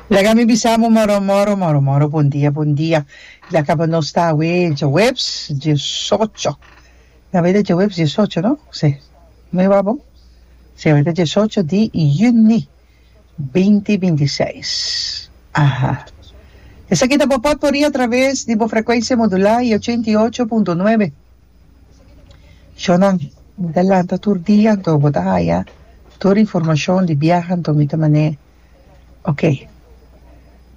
Laga mi bisa amo moro moro moro moro bon dia bon dia ya kaba nos ta awe jeweps diesocho na bida jeweps diesocho no si mi wou abo si awe ta diesocho di juni binti binti i seis aha esaki ta bo potpourri a traves di bo frekuensia modula y ochenta y ocho punto nuebe. Shonnan, mi ta lanta tur dia anto bo ta haya tur informashon di biaha anto mi ta man'é ok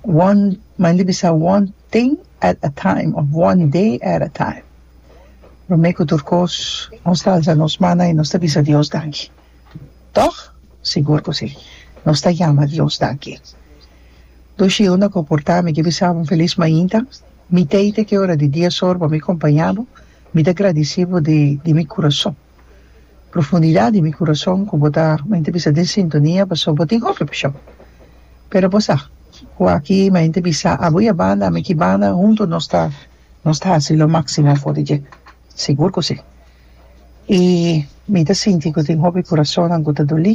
one main di bisa one thing at a time of one day at a time promé ku tur kos nos alza nos mannan i nos ta bisa Dios danki. Tòg? Sigur ku sí! Nos ta yama Dios danki. Dushiu na koportá mi di bisa bo un felis mainta. Mi tei te ke ora di dia sor pa mi kompañá bo. Mi ta gradisí bo di di mi kurason, profundidat di mi kurason ku bo ta mañana bisa den sintonia pasó bo tin hopi pashon. Pero bo sa ku aki mañana bisa abo i abanda, ami ki banda huntu nos ta nos ta hasi lo máksimo for di dje. Sigur ku sí! I mi ta sinti ku tin hopi kurasonnan ku ta doli.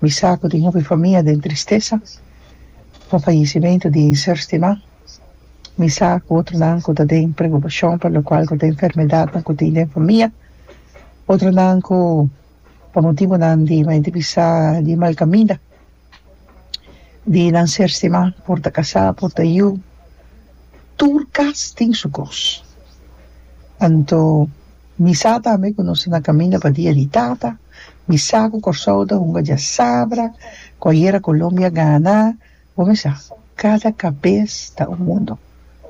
Mi sa ku tin hopi famia den tristesa pa fayesimentu di e ser stimá. Mi sa ku otronan ku ta den preokupashon pa lokual ku ta enfermedatnan ku tin den famia. Otronan ku pa motibunan di bai divisá di malkaminda. di nan ser stima por ta casá por ta yu tur cas tin su cos anto mi sa tambe cu nos a caminda pa dia di tata mi sa cu Corsou ta hunga diasabra cu ayera Colombia a gana bo mi sa cada cabes ta un mundo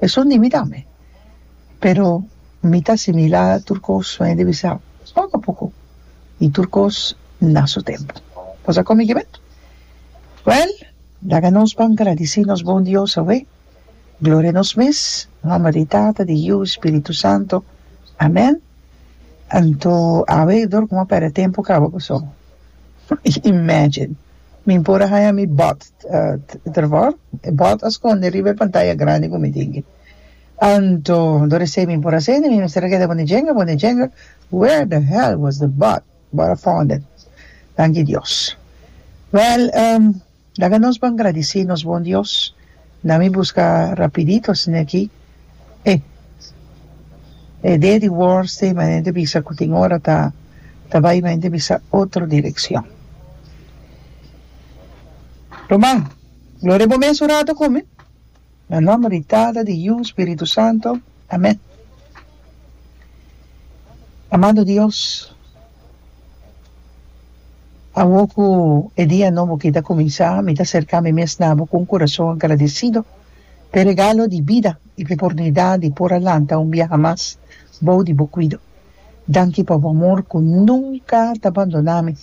esun di mi tambe pero mi ta asimila tur cos mi dibi sa poco poco y tur cos na su tempo. Nos a come gibeto? Well, laga nos por gradici nos bon Dios awe. Gloria nos mes, nomber di Tata, di Yu y Spiritu Santo. Amen. Anto awe dor como a perde tempo caba cu so. Imagine. Mi por a haya mi bot, Trevor, bot a sconde riba e pantaya grandi cu mi tingi. Anto do resei mi por a sende mi mester a keda bo ne jenga bo ne jenga where the hell was the bot bot a found it tanki Dios well um laga nos ban gradisi nos bon Dios na mi buska rapidito asina aki e e dea di worst day manera te bisa ku tin ora ta ta bai manera te bisa otro direccion ruman gloria bo mes un rato con mi. Na nomber di Tata, di Yu, Spiritu Santo. Amen. Amado Dios, awor cu e dia nobo aki ta cuminsa, mi ta cerca mi mes na bo cu un corazon agradecido pa e regalo di bida y pa e oportunidad di por a lanta un biaha mas bao di bo cuido. Danki pa bo amor ku nunka ta bandoná mi,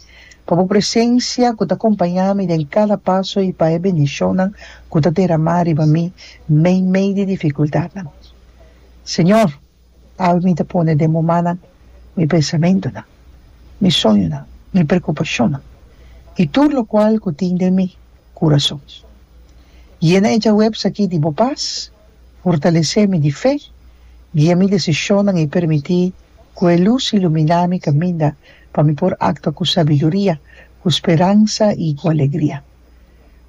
pa bo presensia ku ta kompañá mi den kada paso i pa e bendishonnan ku ta deramá riba mi meimei di difikuldatnan. Señor, abi mi ta pone den bo mannan mi pensamentunan, mi soñonan, mi preokupashonnan i tur lokual ku tin den mi kurason. Yena e djawèps aki di bo pas. Fortalesé mi di fe, guia mi desishonnan i permití ku e lus iluminá mi kaminda pa mi por aktua ku sabiduria, ku speransa i ku alegria.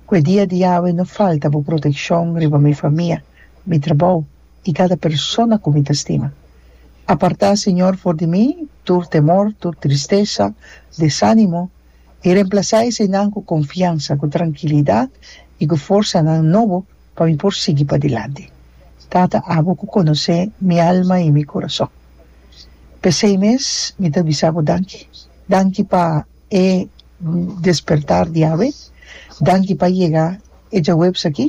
Ku e dia di Yawe no falta Bo protekshon riba mi famia, mi trabou i kada persona ku mi ta stima. Apartá, Señor, for di mi tur temor, tur tristesa, desánimo, i remplasá esenan ku konfiansa, ku trankilidat i ku forsanan nobo Pa mi por sigui padilanti. Tata, abo ku konosé mi alma i mi kurason. P'esei mes mi ta bisa bo danki. Danki pa e despertar di awe. Danki pa yega e djaweps aki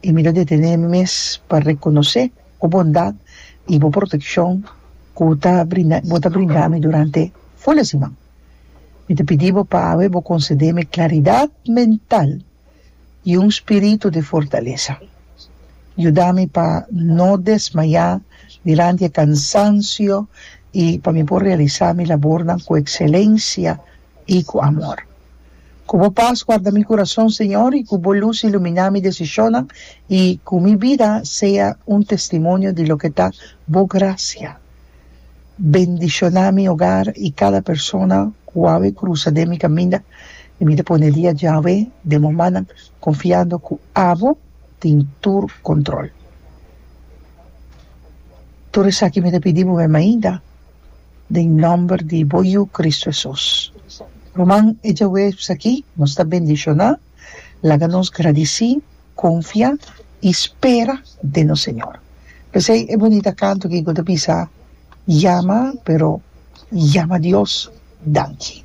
i mi ta detené mi mes pa rekonosé bo bondat i bo protekshon ku ta brinda bo ta brinda mi durante ful e siman. Mi ta pidi bo pa awe bo konsedé mi klaridat mental i un spiritu di fortalesa. Yuda mi pa no desmayá dilanti e kansansio i pa mi por realisá mi labornan ku ekselensia i ku amor. Ku bo pas guarda mi kurason, Señor, i ku bo lus iluminá mi desishonnan, i ku mi bida sea un testimonio di loke ta bo grasia. Bendishoná mi ogar i kada persona ku au e krusa den mi kaminda, i mi ta pone dia Yawe den bo mannan, konfiando ku abo tin tur kontrol. Tur esaki mi ta pidi bo mei mainta, den nòmber di bo Yu, Kristu Hesus. Ruman, e djaweps akí nos ta bendishoná. Laga nos gradici, confia y spera den nos Señor. Pesey e bunita canto Kiko ta bisa, Yama, pero yama Dios, danki.